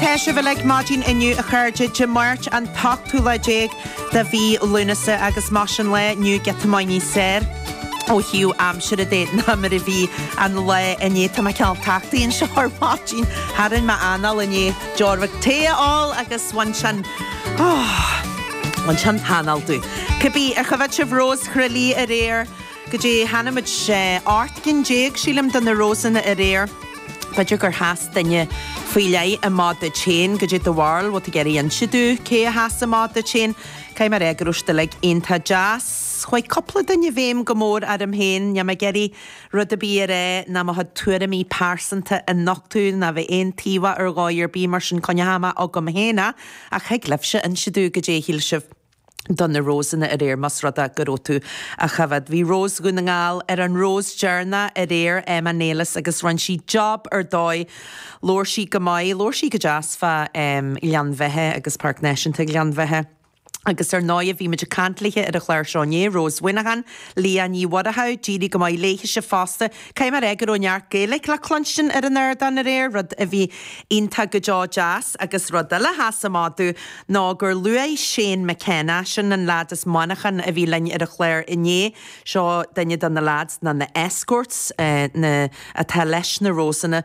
Tá sibh uilig maidin inniu a chairde Dé Máirt an t-ochtú lá déag de mhí Lúnasa agus más an lá inniu giota maith níos fearr ó thaobh aimsire de ná mar a bhí an lá inné. Tá mé cineál tachtaithe anseo ar maidin. Tharraing mé anáil i ndiaidh deoir bheag tae a ól agus bhain sin bhain sin an anáil domh. Cibé, ar choimhead sibh Rós Thrá Lí aréir? goidé chonaic muid sé ocht gcinn déag, sílim, de na rósanna aréir. B'fhéidir gur sheas duine faoi leith amach duit féin goidé do bharúil, bhfuil tú ag iarraidh inse domh cé a sheas amach duit féin? Caithfidh mé rá go raibh siad uilig iontach deas. Chuaigh cúpla duine i bhfeidhm go mór orm féin, níl mé ag iarraidh rud ar bith a rá ná mo chuid tuairimí pearsanta a nochtadh ná bheith aon taobhach ar dhóigh ar bith, mar sin coinneoidh mé agam féin é, ach thig libhse inse domh goidé a shíl sibh. do na Rósanna aréir más rud é go raibh tú á choimhead. Bhí Rós Dhún na nGall ar an Rós deireanach aréir, Emma Nelis, agus rinne sí job ar dóigh. Labhair sí go maith. Labhair sí go deas fá em Ghleann Bheithe agus Páirc Náisiúnta Ghleann Bheithe. Agus ar ndóighe bhí muid ag caint léithe ar an chlár seo inné, Rós Mhuineacháin, Leah Ní Mhurchadha, d'éirigh go maith léithise fosta. Caithfidh mé a rá go raibh neart Gaeilic le cluinstin ar an ardán aréir, rud a bhí iontach go deo deas agus rud eile a sheas amach domh ná gur luaigh Shane McKenna, sin an lead as Muineachán a bhí linn ar an chlár inné, seo duine de na leads de na Escorts, na atá leis na Rósanna,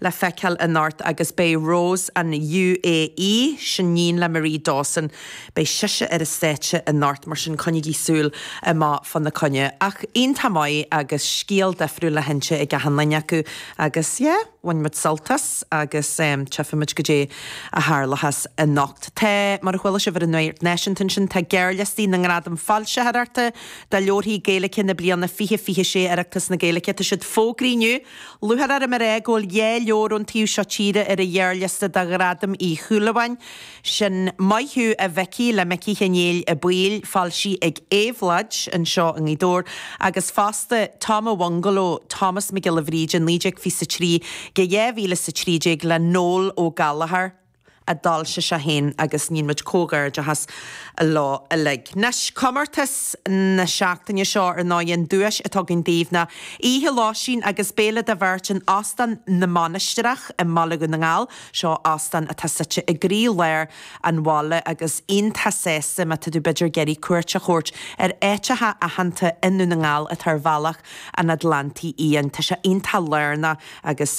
le feiceáil anocht agus beidh Rose an UAE, sin iníon le Marie Dawson, beidh sise ar an stáitse anocht mar sin coinnígí súil amach fána coinne. Ach iontach maith agus scéal difriúil le hinse ag achan duine acu agus yeah, bhain muid sult as agus tchífidh muid goidé a tharlachas anocht. Tá, mar a chuala sibh ar an Nuacht Náisiúnta ansin, tá gearrliostaí na nGradam Foilsitheoireachta do leabharthaí Gaeilice na bliana 2026 Oireachtas na Gaeilge. Tá siad fógraithe inniu. Lúcháir orm a rá go bhfuil dhá leabhar ón taobh seo tíre ar an ghearrliosta do Ghradam Uí Shúilleabháin, sin Maith thú a Mhicí le Micí Sheáin Néill Ó Baoill, foilsithe ag Éabhlóid, anseo i nGaoth Dobhair, agus fosta Tom a' Bhungaló, Tomás Mac Giolla Bhríde 1923-2013 le Noel Ó Gallachóir. a d'fhoilsigh sé féin agus ghní muid comhghairdeachas leo uilig. Anois, comórtas na seachtaine seo, ar ndóigh, an duais atá againn daoibh ná oíche lóistín agus béile do bheirt in Óstán na Mainistreach i mBaile Dhún na nGall. Seo óstán atá suite i gcroílár an bhaile agus iontas áisiúil má tá tú, b'fhéidir, ag iarraidh cuairt a thabhairt ar áiteacha aitheanta i nDún na nGall atá ar bhealach an Atlantaigh Fhiáin. Tá sé iontach lárnach agus.